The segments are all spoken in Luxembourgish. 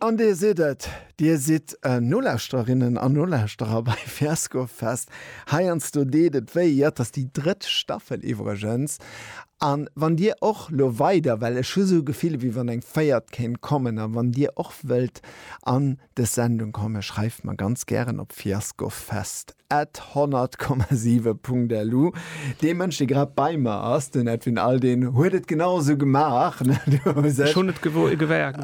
An Dir sidd et, Dir sidd Nolauschtererinnen an Nolauschterer bei Fiasco Fest. Heiansdo deet et wéi. Jo, et ass déi drëtt Staffel iwwregens. A wann Dir och lo weider, well ech hu sou Gefiller, wéi wann eng véiert kéint kommen, a wann Dir och wëllt an, Dës Sendung komm, schreift mer ganz gären op fiaskofest at 100,7 punkt lu. Dee Mënsch, dee grad bei mer ass, den Edwin Aldin, huet et genau esou gemaach. Schon net gewaart.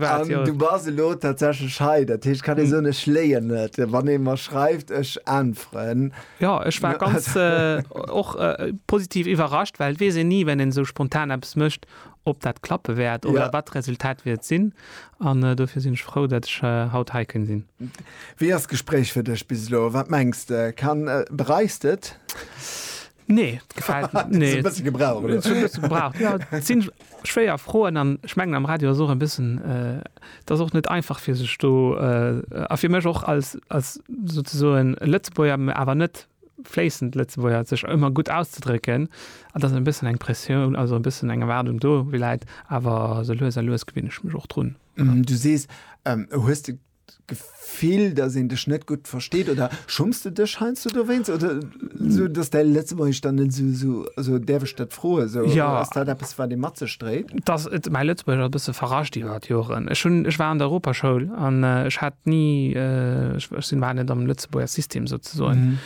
Du bas elo tatsächlich hei. Dat heescht, kann ee soen, ech léien net, wann ee mer schreift, ech äntweren. Jo, ech war ganz och positiv iwwerrascht, well et weess een ni, wann een esou spontan eppes mécht, ob dat klappe wäert oder wat d'Resultat wäert sinn. An dofir sinn ech frou, dat ech haut hei kënn sinn. Wéi ass d'Gespréich fir dech bis elo? Wat mengs de? Kann, bereiss de et? Nee, et gefält mir. Hues e bësse gebraucht? Huet schon e bësse gebraucht, jo. Et sinn schwéier Froen an ech mengen am Radio ass och e bëssen, et ass och net einfach fir sech do a fir mech och als als souzesoen Lëtzebuerger, mä awer net fléissend Lëtzebuerger sech ëmmer gutt auszedrécken, an dass e bëssen eng Pressioun, also e bëssen eng Erwaardung do läit. Awer esou lues a lues gewinne ech mech och drun. Du sees, hues de d'Gefill, dass een dech net gutt versteet? Oder schumms de dech heiansdo dowéinst? Oder esou, dass däi Lëtzebuergesch dann net esou, also däerf ech dat froen? Esou, ass dat eppes, wat ee mat sech dréit? Dass et mäi Lëtzebuergesch ass e bësse verrascht iwwer d'Joren. Ech hunn, ech war an der Europaschoul an ech hat ni, ech sinn, war net am. Lëtzebuerger System sou ze soen. Mhm.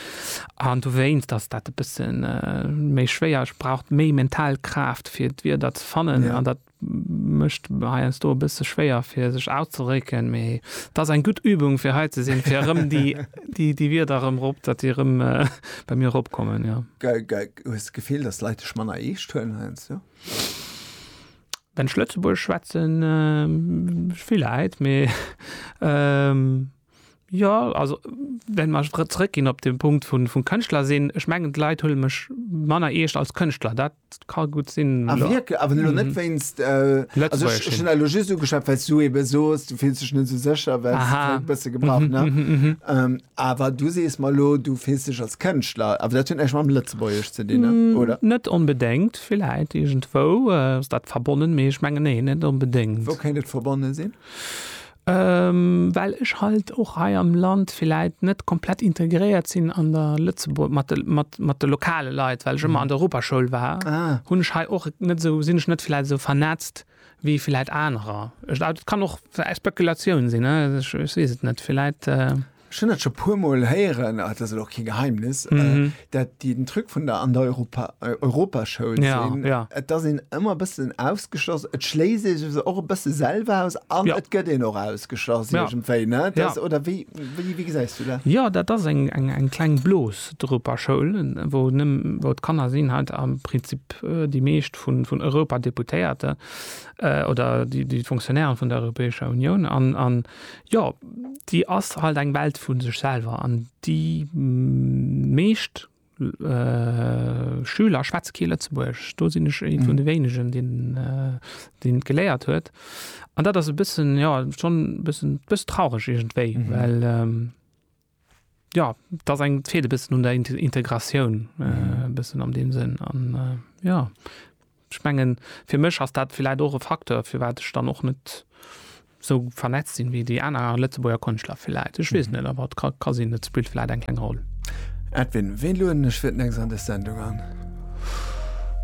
An du wéinst, dass dat e bëssen äh, méi schwéier ass, braucht méi mental Kraaft, fir d'Wierder ze fannen. Ja. An dat mëscht heiansdo do e bësse schwéier, fir sech auszedrécken. Mee dat ass eng gutt Übung, fir hei ze sinn, fir erëm déi, déi, déi Wierder erëm rop, datt déi erëm äh, bei mir ropkommen. Ja. Ge, ge, hues du Gefill, dass Leit dech manner eescht huelen heiansdo? Wenn ech Lëtzebuergesch schwätzen, äh, villäit, mee ähm, Jo, also well mer ech zrëckginn op de Punkt vun vum Kënschtler sinn, ech mengen d'Leit huele mech manner eescht als Kënschtler, dat ka gutt sinn. Ah wierklech? Awer elo net wéinst, also ech hunn dat elo just ugeschwat, well s du eebe soos, du fills dech net esou sécher, well s kléngt e bësse gebraucht, ne? Awer du sees mer elo, du fills dech als Kënschtler, awer dat huet näischt mam Lëtzebuergesch ze dinn, oder? Net onbedéngt, villäit iergendwou ass dat verbonnen, mee ech mengen, nee, net onbedéngt. Wou kéint et verbonne sinn? well ech halt och hei am Land villäit net komplett integréiert sinn an der Lëtzebuer-, mat de, mat, mat de lokale Leit, well ech ëmmer an der Europaschoul war, hunn ech hei och net esou, sinn ech net villäit esou vernetzt wéi villäit anerer. Et kann och Spekulatioun sinn, ech weess et net, villäit. Ech hunn dat scho puer Mol héieren, ah, dat ass elo och kee Geheimnis, äh, Mhm. dat déi den Truc vun der an der Europa, äh, Europaschoul Ja, sinn. ja. Et ass een ëmmer e bëssen ausgeschloss. Et schléisst ee sech och e bësse selwer aus an Ja. et gëtt een och ausgeschloss Ja. iergendwéi, ne? Ja. Das, oder wéi, wéi, wéi gesäis du dat? Ja, dat ass eng, eng, eng kleng Blos, d'Europaschoul, wou nëmm, wou d'Kanner sinn halt am Prinzip äh, déi meescht vun, vun Europadeputéierte äh, oder déi, déi Fonctionnairen vun der Europäescher Unioun an, an Jo, déi ass halt eng Welt vu sech selwer an déi meescht Schüler schwätze kee Lëtzebuergesch. Do sinn ech ee vun de wéinegen, deen et geléiert huet. An dat ass e bëssen, jo, schonn e bëssen traureg iergendwéi, well. Jo, et ass eng, et feelt e bëssen un der Integratioun e bëssen an deem Sënn. An jo, ech mengen, fir mech ass dat villäit och e Facteur, firwat ech dann och net esou vernetzt sinn, wéi déi aner Lëtzebuerger Konschtler villäit. Ech weess et net, awer et ka, ka sinn, et spillt villäit eng kleng Roll. Edwin, wien lueden ech fir d'nächst an dës Sendung an?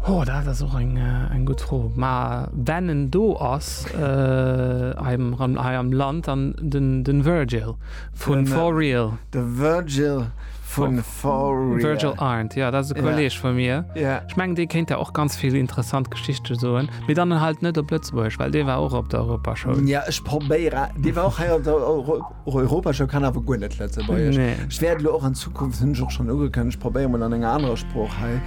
Ho, dat ass och eng, eng gutt Fro. Ma wenn en do ass hei am, hei am Land, dann den, den Virgil. Vun For Real. De Virgil vun For Real. Virgil Arndt, jo, dat ass e Kolleeg vu mir. Ech mengen, dee kéint der och ganz vill interessant Geschichte soen. Mee dann halt net op Lëtzebuerg, well dee war och op der Europashow. Jo, ech probéieren. Dee war och hei op der Europashow, kann awer guer net Lëtzebuergesch. Ech wäert elo och an Zukunft, hunn ech och schonn ugekënnegt, probéieren, mol an enger anerer Sprooch hei.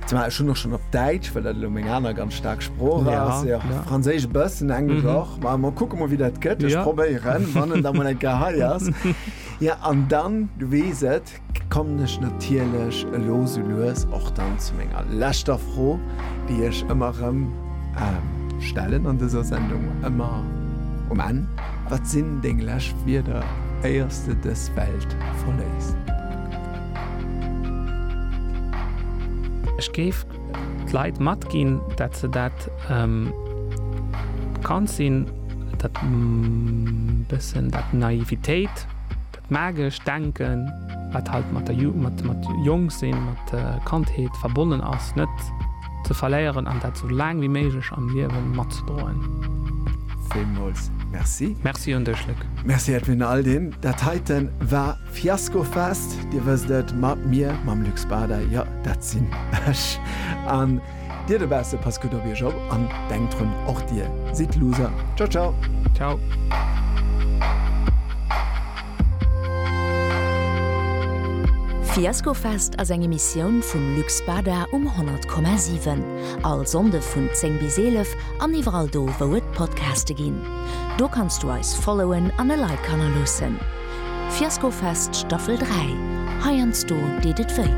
Zumal ech hunn och schonn op Däitsch, well dat elo meng aner ganz staark Sprooch ass, jo, Franséisch e bëssen, Englesch och. Ma mer kucke mol, wéi dat gëtt. Ech probéieren, wann en da mol eng Kéier hei ass. Jo, an dann, du weess et, kommen ech natierlech elo sou lues och dann zu menger leschter Fro, déi ech ëmmer erëm stellen an dëser Sendung, ëmmer um Enn, Wat sinn deng lescht Wierder, éiers de dës Welt verléiss? Ech géif d'Leit matginn, dat se dat bekannt sinn, dat bëssen dat Naivitéit, dat magescht Denken, wat halt mat der mat Jongsinn, mat der Kandheet verbonnen ass, net ze verléieren an dat sou laang wéi méiglech am Liewe matzedroen. Villmools Merci. Merci un dech, Luc. Merci Edwin Aldin. Dat heiten war. Fiasco Fest, Dir wësst et, mat mir, mam Luc Bader, jo, dat sinn ech. An Dir dobausse, passt gutt op Iech op an denkt drun, och Dir sidd Loser. Ciao, ciao. Ciao. Fiasco Fest ass eng Emissioun vum Luc Bader um 100,7. All Sonnde vun 10 bis 11 an iwwerall do, wou et Podcaste ginn. Do kanns du eis followen an e Like hannerloossen. Fiasko Fest Staffel 3, heiansdo deet et wéi.